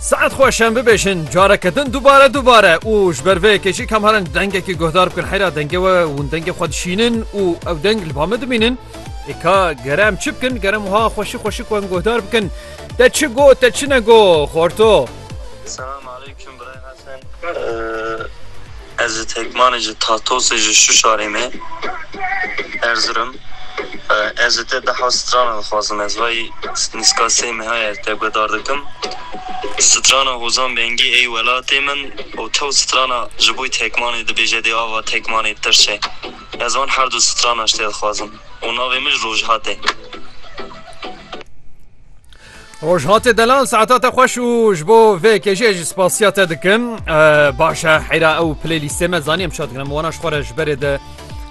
Saet xwe şem bibêjin careke din dubare dubare û ji ber vê yekê jî kam herin dengekî guhdar bikin heyra dengê we hûn dengê xwe dişînin û ew deng li ba min dimînin êka gere em çi bikin gerem wiha xweşî xweşî xwe em guhdar bikin te çi go te çi ne go xorto Selam aleyküm Bray Hasan. Ez ji Tekmanê ji Tatosê ji Şuşarê me Erzurum ez ji te deha strana dixwazim ez vay nîska sey meha ye te guedar dikim strana Hozan Bengî ey welatê min û tew strana ji boy Tekmanê dibêje dê ava Tekmanê bi tirşe ez van herdu strana ji te dixwazim û navê min ji Rojhate. Rojhatê delal saeta te xweş û ji bo vê kêjiyê jî spasiya te dikim. Baş e heyra ew playlîstê me zanî em şat dikim wana ji xwe re ji berê de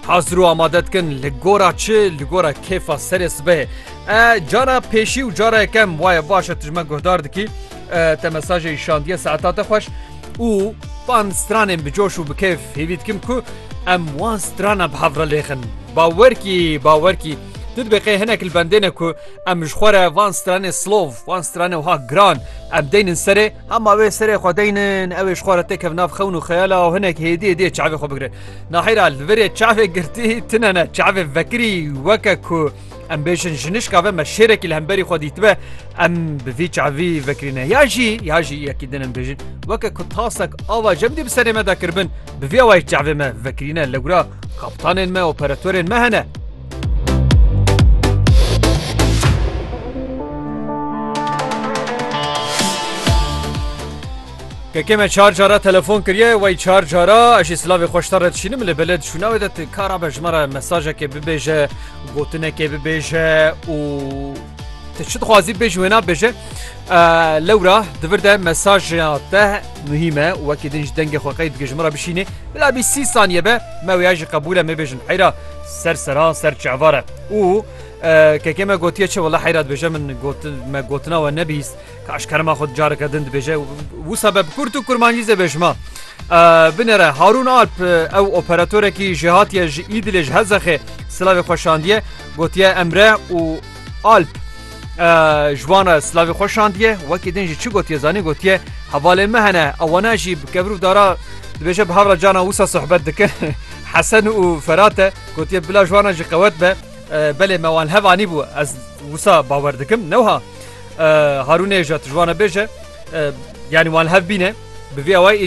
hazir û amade dikin li gora çi li gora kêfa serê sibê. E cara pêşî û cara yekem waye baş e tu ji me guhdar dikî te mesajê îşandiye saeta te xweş û van stranên bi coş û bi kêf hêvî dikim ku em wan strana bi hev re lêxin. Bawerkî bawerkî tu dibê qê hinek li bendêne ku Em ji xwe re van stranê silov, van stranê wiha giran em deynin serê, hema wê serê xwe deynin ew ê ji xwe re têkevin nav xewn û xeyala û hinek hêdî hêdî yê çavê xwe bigirin. Nahêra li vir ê çavê girtî tune ne, çavê vekirî weke ku em bêjin jinişka ve me şêrekî li hemberî xwe dîtibe em bi vî çavî vekirîne. Ya jî ya jî yekî din em bêjin weke ku tasek ava cem dî bi serê me de kiribin bi vî awayî çavê me vekirîne li gura kaptanên me operatorên me hene. Kekê me çar cara telefon kiriye wey çar cara eşî silavê xweşta re dişînim li belê dişûna wê de kara be ji me re mesajekê bibêje gotinekê bibêje û te çi dixwazî bêj wê nabêje lewra divir de mesaja te muhîm e wekî din ji dengê xweqey dike ji min re bişînê bila bî sî saniye be me wêya jî qebûle mêbêjin heyra Ser sera ser çevar e û kekê me gotiye çi wela heyra dibêje min me gotina we nebîst ka ji kerema xwe careke din dibêje wisa be bi kurt û kurmancî zê bêjima. Binêre Harûn Alp ew operatorekî jihatiye ji Îdilê ji Hezexê silavê xweşandiye gotiye emre û Alp ji wan re silavê xwe şandiye wekî din jî çi gotiye zanî gotiye hevalê me hene ewana jî bi kevrû dara dibêje bi hevra cana wisa sohbet dikin hesen û ferate gotiye bila ji wana jî qewet be belê me wan hevanî bû ez wisa bawer dikim newha harûnê ji ji wana bêje yanî wan hev bîne bi vê awayî